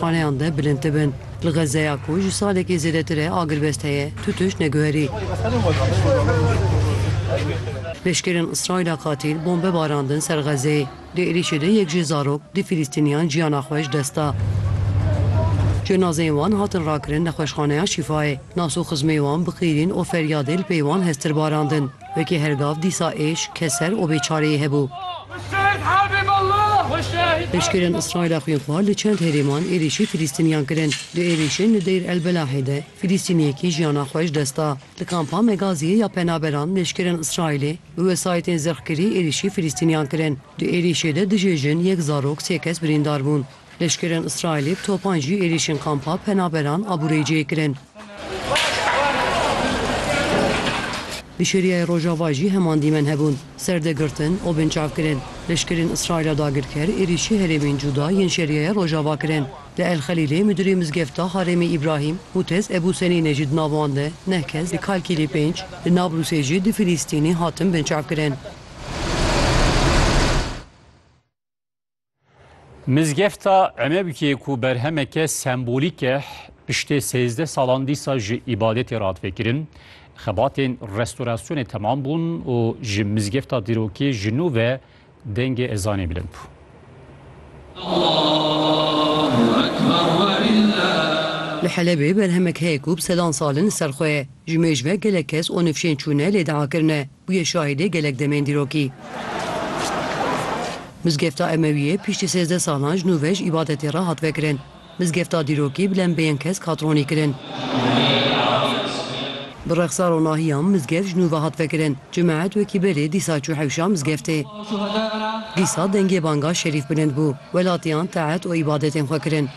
Xaneyan de bilind dibin. Li Xezzeya ku ji salekê zêdetir e agirbest heye, tu tişt neguherî. Leşkerên Îsraîla qatîl bombe barandin ser Xezzeyê. Di êrîşê de yek jê zarok du Fîlîstîniyan jiyana xwe ji dest da. Cenazeyên wan hatin rakirin nexweşxaneya Şîfayê. Nas û xizmê wan bi qîrîn û feryadê li pey wan hestir barandin. Wekî her gav dîsa êş, keser û bêçareyê hebû. Leşkerên Îsraîla xwînxwar li çend herêman êrîşî Filîstîniyan kirin. Di êrîşên li Deyr El Belahê de Filîstîniyekî jiyana xwe ji dest da. Li kampa Megaziyê ya penaberan leşkerên Îsraîlê bi wesayîtên zirxkirî êrîşî Filîstîniyan kirin. Di êrîşê de dijê jin, yek zarok, sê kes birîndar bûn. Leşkerên Îsraîlê bi topan jî êrîşên kampa penaberan a Bureyceyê kirin. Di Şeriyayê Rojava jî heman dîmen hebûn. Serdegirtin û binçav kirin. Leşkerên Îsraîla dagirker êrîşî herêmên cuda yên Şeriyaya Rojava kirin. Li El Xelîlê Midirê Mizgefta Harêmê Îbrahîm Mûtez Ebû Senîne jî di navan de neh kes di Kalkîlê pênc, di Nablûsê jî du Filîstînî hatin binçavkirin. Mizgefta Emebikê ku berhemeke sembolîk e piştê sêzdeh salan dîsa ji îbadetê re hat vekirin. Xebatên restorasyonê temam bûn û ji mizgefta dîrokê ji nû ve dengê ezanê bilind bû. Li Helebê berhemek heye ku bi sedan sal in li ser xwe ye. Ji mêj ve gelek kes û nifşên çûne lê diakirine. Bûye şahîdê gelek demên dîrokî. Mizgefta Emewiyê piştî sêzdeh salan ji nû ve ji îbadetê re hat vekirin. Mizgefta dîrokî bi lembeyên kesk hat ronîkirin. Bi rexsar û nahiyan mizgeft ji nû ve hat vekirin. Cemaet wekî berê dîsa çû hewşa mizgeftê. Dîsa dengê banga şerîf bilind bû. Welatiyan taet û îbadetên xwe kirin.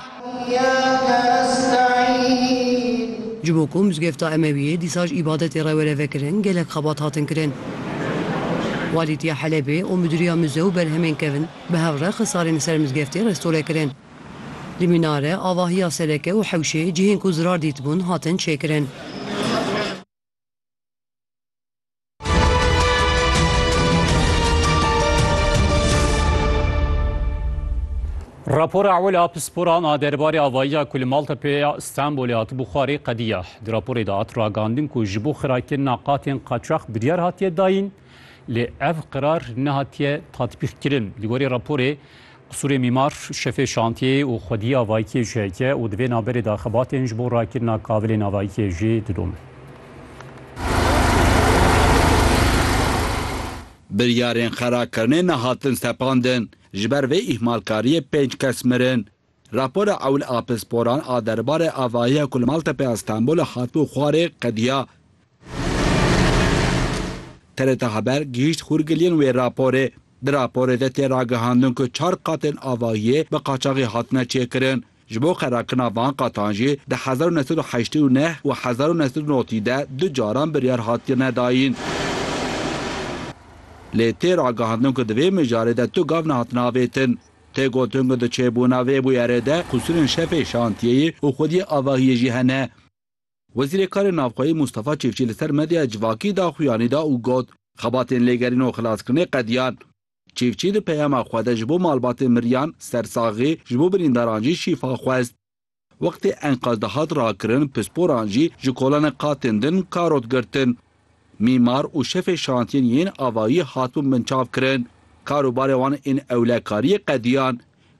Ji bo ku mizgefta Emewiyê dîsa ji îbadetê re were vekirin gelek xebat hatin kirin. Walîtiya Helebê û Midiriya Mize û Berhemên Kevn bi hev re xisarên li ser mizgeftê restore kirin. Li mînare, avahiya sereke û hewşê cihên ku zirar dîtibûn hatin çêkirin. Rapora ewil a pisporan a derbarê avayiya ku li Maltepeya Stenbolê hatibû xwarê qediya. Di raporê de hat ragandin ku ji bo xirakirina qatên qaçax biryar hatiye dayîn lê ev qirar nehatiye tatbîqkirin. Li gorî raporê Qisûrê mîmar, şefê şantiyê û xwedîya Vaykiyê ji heke û di vê navberê de xebatên ji bo rakirina kavilê navaykiyê jî didomin. Biryarên xerakirinê nehatin sepandin, ji ber vê îhmalkariyê pênc kes mirin. Rapora ewil a pisporan a derbarê avahiya ku li Maltepe ya Stenbolê hatibû xwarê qediya TRT Haber gihîşt xûrgiliyên wê raporê. Di raporê de tê ragihandin ku çar qatên avahiyê bi qaçaxî hatine çêkirin. Ji bo xerakirina van qatan jî di hezar û neh sed û heştê û neh û hezar û neh sed û notî de du caran biryar hatiye nedayîn. Lê tê ragihandin ku di vê mijarê de tu gav nehatine avêtin. Tê gotin ku di çêbûna vê bûyerê de qusûrên şefê şantiyeyê û xwediyê avahiyê jî hene. Wezîrê Karên Navxweyî Mûstafa Çêfçî li ser medyaya civakî da xuyanî da û got, Xebatên lêgerîn û xilaskirinê qediyan. Çêfçî di peyama xwe de ji bo malbatên miriyan, sersaxî, ji bo birîndaran jî şîfa xwest. Wextê enkaz dihat rakirin, pisporan jî ji kolanek qatên din karot girtin. Mîmar û şefê şantiyên yên avayî hatibûn binçavkirin. Karûbarê wan ên ewlekariyê qediyan.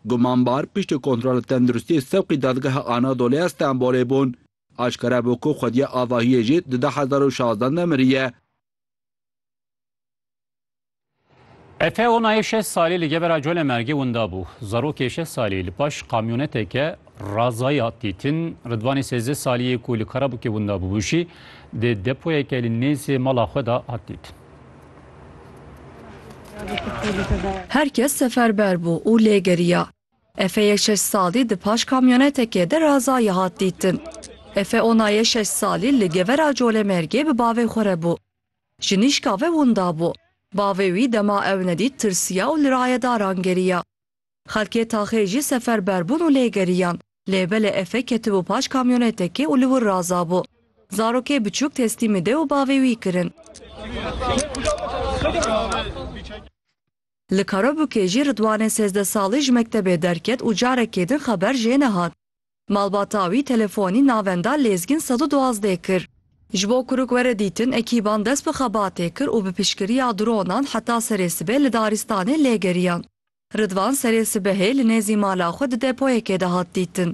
Gumanbar piştî kontrola tenduristiyê sewqî Dadgeha Anadolu ya Stenbolê bûn. Aşkere bû ku xwediya avahiyê jî di du hezar û şazde de miriye. Efe onayê şeş salî li gebera Cole Mergê winda bû. Zarokê şeş salî li paş kamyoneteke razayî hat dîtin. Ridvanê sêzdeh salî yê ku li Karabûkê winda bûbû jî di depoyeke li nêzê mala xwe de hat dîtin. Her kes seferber bû û lê geriya. Efeyê şeş salî di paş kamyonetekê de razayî hat dîtin. Efe onayê şeş salî li gebera Cole Mergê bi bavê xwe re bû. Jinîşka ve winda bû. Bavê wî dema ew nedît tirsiya û li rayedaran geriya. Xelkê taxê jî seferber bûn û lê geriyan. Lê belê Efe ketibû paş kamyonetekê û li wir razabû. Zarokê biçûk teslîmî dê û bavê wî kirin. Li Karabûkê jî Ridwanê sêzdeh salî ji mektebê derket û carekê din xeber jê nehat. Malbata wî telefonî navenda Lêzgîn sed û duwazdeh kir. Ji bo kuruk were dîtin, ekîban dest bi xebatê kir û bi piştgiriya dronan heta serê sibê li daristanê lê geriyan. Ridvan serê sibehê li nêzî mala xwe di depoyekê de hat dîtin.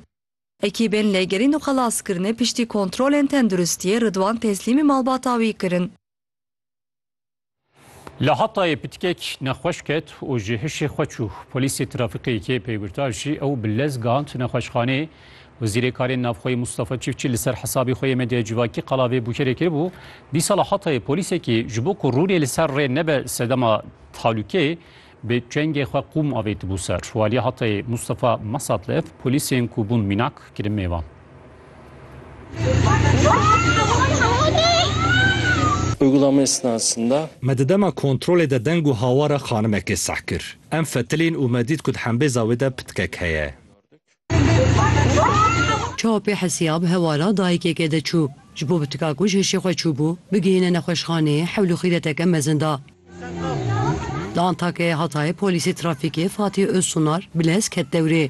Ekîbên lêgerîn û xelaskirinê piştî kontrolên tenduristiyê Ridwan teslîmî malbata wî kirin. Li Hatayê pitikek nexweş ket û ji hişê xwe çû. Polîsê trafikê yekê peywirta jî ew bi lez gihand nexweşxaneyê. Wezîrê Karên Navxweyî Mustafa Çifçî li ser hesabê xwe yê medyaya civakî qala vê bûkerê kiribû. Dîsa li Hatayê polîsekî ji bo ku rûnê li ser rê nebe sedema tehlûkeyê, Bi çengê xwe qûm avêtibû ser. Waliya Hatayê Mustafa Masatlev polîsên ku bûn mînak kirin mêvan. Uygulamaya sınasında. Me di dema kontrolê de deng û hawara xanimekê seh kir. Em fetilîn û me dît ku di hembêza wê de pitkek heye. Çapê Hesiyab hewala dayikeke de çû. Ji bo bi tika ku ji hişê xwe çûbû, bigihîne nexweşxaneyê hewl û xîreteke mezin da. Li Antakyayê Hatayê polîsê trafîkê Fatih Özsunar bi lez ket dewrê.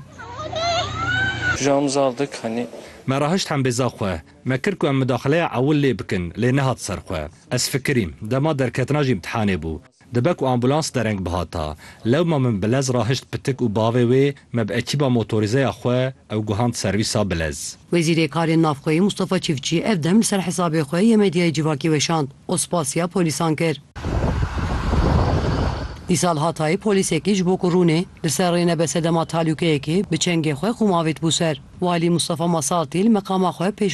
Pijam zal dik hani. Me rahişt hembêza xwe. Me kir ku em midaxileya ewil lê bikin lê nehat ser xwe. Ez fikirîm. Dema derketina ji îmtihanê bû. Dibe ku ambulans dereng bihata. Lewma min Bilez rahişt pitik û bavê wê me bi ekîba motorîzeya xwe ew guhand serwîsa Bilez. Wezîrê Karên Navxweyî Mustafa Çîfçî ev dem li ser hesabê xwe yê medyayê civakî weşand û spasiya polîsan kir. Dîsa li Hatayê polîsekî ji bo ku rûnê li ser rê nebe sedema talûkeyekê, bi çengê xwe qûm avêt bû ser. Walî Mustafa Masaltî li meqama xwe pêş.